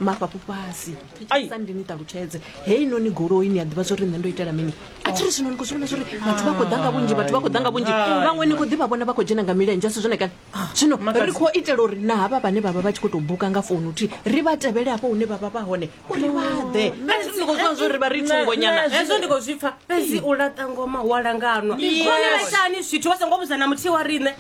mafhafhu fhasi Ai. sa ndi ni ṱalutshedze heinoni goloi ni a ḓivha zwo ri nṋe ndo itela mini a tshi ri zwino ni khou zwi vhona zwo ri vhathu vha khou ḓa nga vhunzhi vhathu vha khou ḓa nga vhunzhi vhaṅwe ni khou ḓivha vhona vha khou dzhena nga milenzhe a si zwone kana zwino Makhadzi. ri khou itela uri na havha vhane vha vha vha tshi khou tou buka nga founu thi ri vha tevhele hafho hune vha vha vha hone uri vha ḓe Kana ni khou zwiwa zwo ri vha ri thungonyana hezwo ndi khou zwi pfa fhedzi u laṱa ngoma wa langanwa Yes. vhone vhaitani zwithu vha songo vhudza na muthihi wa riṋe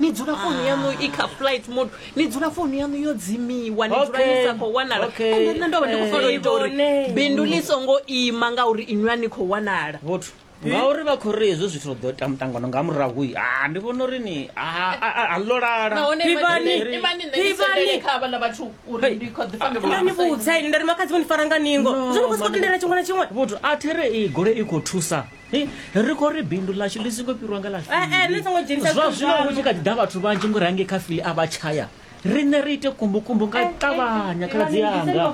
ni dzula founu yanu i kha flight mode ni dzula founu yanu yo dzimiwa ni dzula ni sa khou wanala ende nṋe ndo vha ndi khou fanela u ita uri bindu ḽi songo ima ngauri inwi a ni khou wanala vhothu ngauri vha khou ri hezwo zwithu ḓo ita muṱangano nga murahu ha ah, ndi vhona uri ni ah, ah, a ḽo lalani vhudza ini nda ri makhadzi vho ni fara nga ningo zwo ni khou sokou tendela tshiṅwe na tshiṅwe vhothu a there i gole i khou thusa ri khou ri bindu ḽashu ḽi songo fhirwa nga ḽashuizwa zwino hu tshi kha ḓi ḓa vhathu vhanzhi ngori hangei kha fili a vha tshaya riṋe ri ite kumbukumbu nga ṱavhanya khaladzi yanga